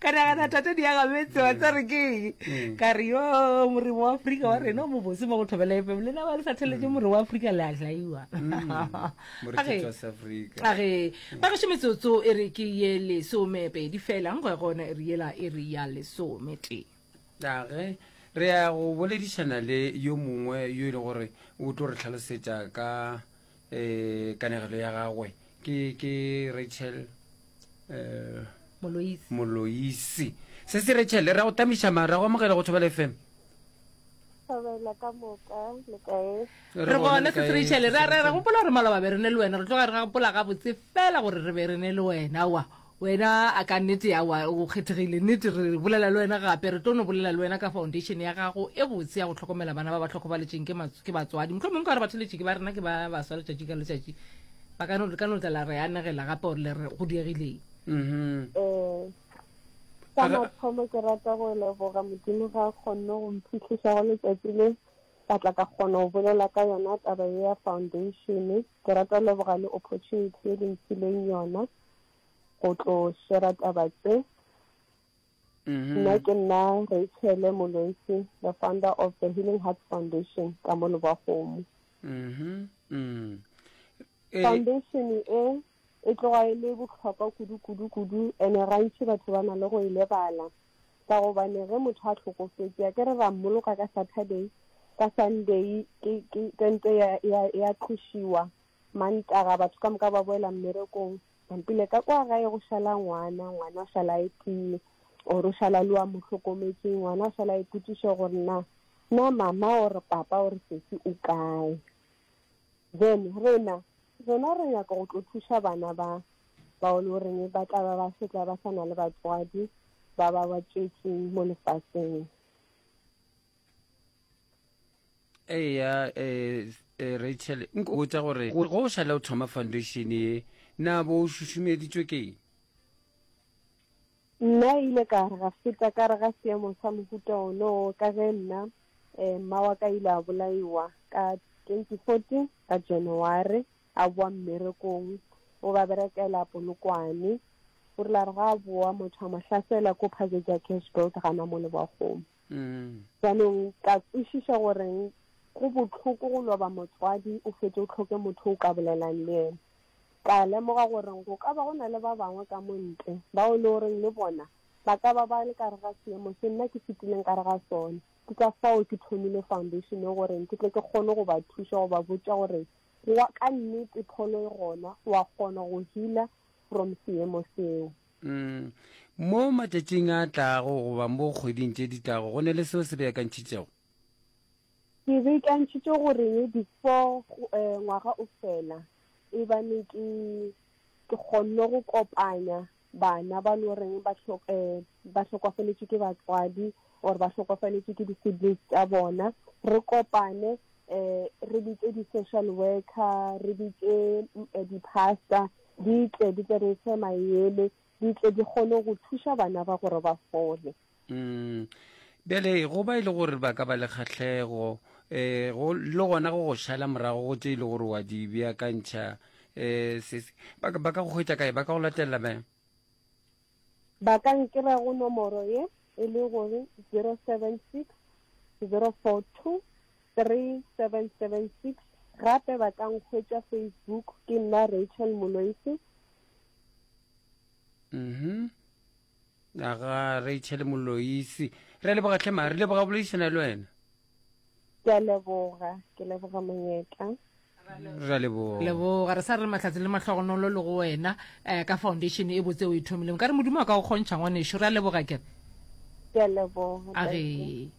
ka nagana thata di aga metse wa tsa re keng mm. ka re yo morimo wa aforika wa rena o mo bose mo go thobela efem le na ba le sa theletše morimo wa aforika le a jaiwa age mm. ba gešo metsotso e re ke ye lesome pedi fela nkgo ya gona e re yela e re ya lesome tee age re ya go boledišana le yo mongwe yo e le gore o tlo re tlhalosetša ka e kanegelo ya gagwe ke ke rachel um moloisi moloisi se se rachel ra go tamiša mara ra go amogela go thobela fm Thobela ka moka le kae re gona se se rachel ra ra ra gopola gore maloba be re ne le wena re tloga re ga gopola gabotse fela gore re be re ne le wena wa Wena a ka nnete awa o kgethegile nnete, re bolela le wena gape, re tlo no bolela le wena ka foundation ya gago e botse ya go hlokomela bana ba ba hlokofaletšeng ke ke batswadi. Mohlomong nka re batheletšiki ba rena ke ba baswa letšatši ka letšatši ba ka no le ka no tla la re anegela gape gore le re go diegileng. Ee, ka mathomo ke rata go leboga Modimo ga a kgonne go mphitlhiša go letšatši le ka tla ka kgona go bolela ka yona taba ye ya foundation. Ke rata go leboga le opportunity e le mphileng yona. go tlo shera taba tse mm-hmm. nna ke nna rachele molwetse the founder of the healing heart foundation ka mo leboagomo mm-hmm. mm. eh. foundation e e tloga e le botlhokwa kudu-kudu-kudu ene gantši batho ba na le go e lebala ka gobane ge motho a tlhokofetse a ke re ra mmoloka ka saturday ka sunday kente ya tlošiwa Mantaga batho ka moka ba boela mmerekong. Mpile ka kwa gae go šala ngwana, ngwana o šala e tee, or o šala le wa mo hlokometseng, ngwana o šala ipotšiša gore na na mama or papa or sesi o kae. Then rena rena re nyaka go tlo thuša bana ba bao le goreng ba tla ba ba setla ba sa na le batswadi ba ba ba tšwetseng mo lefatsheng. eya eh, eh, rachel nkotsa gore go o šale o thoma foundation ye na bo o šušumeditswe keng nna e ile ka ga feta ka re ga seemo sa mohuta ono ka ge nna um eh, ma wa ka ile a bolaiwa ka twenty fourteen ka january a boa mmerekong o ba berekela polokwane o rile re ga a boa motho a mo hlasela ko phazetsa cash build gana mo leboagomo Jaanong ka kwešiša gore go bohloko go loba motswadi o fete o tlhoke motho o ka bolelang le ena. Ka lemoga gore go ka ba go na le ba bangwe ka mo ntle bao le goreng le bona ba ka ba ba le ka re ga seemo se nna ke fetileng ka re ga sone. Ke ka fao ke thomile foundation e gore ke tle ke kgone go ba thuša go ba botša gore wa ka nnete pholo e gona wa kgona go healer from seemo seo. Mo matšatšing a tlago goba mo kgweding tše di tlago go ne le seo se beakantšhitšego? Ke beakantšhitše gore before ngwaga o fela e bane ke ke kgonne go kopanya bana ba lo reng ba ba hlokofaletšwe ke batswadi or ba hlokofaletšwe ke di-siblings tša bona re kopane re bitse di-social worker re bitse di-pastor di tle di tle re fe mayele di tle di kgone go thuša bana ba gore ba fole mm. bjale go ba e le gore ba ka ba le kgatlhego um le gona go go šala morago go tse e le gore wa di beakantšha um ba ka go hwetša kae ba ka go latelela bjang Ba ka nkira go nomoro ye e le go 076 042 3776 gape ba ka nkhwetša Facebook ke nna Rachel Moloisi. Mhm. Aga Rachel Moloisi. Re leboga tlhema, re leboga boledišana le wena. Ke a leboga, ke leboga monyetla. Re a leboga. Leboga, re sa re mahlatse le mahlogonolo le go wena um ka foundation e botse o e thomileng. Ka re Modimo a ka go kgontšha ngwanešu. Re a leboga kere. Ke a leboga. A re.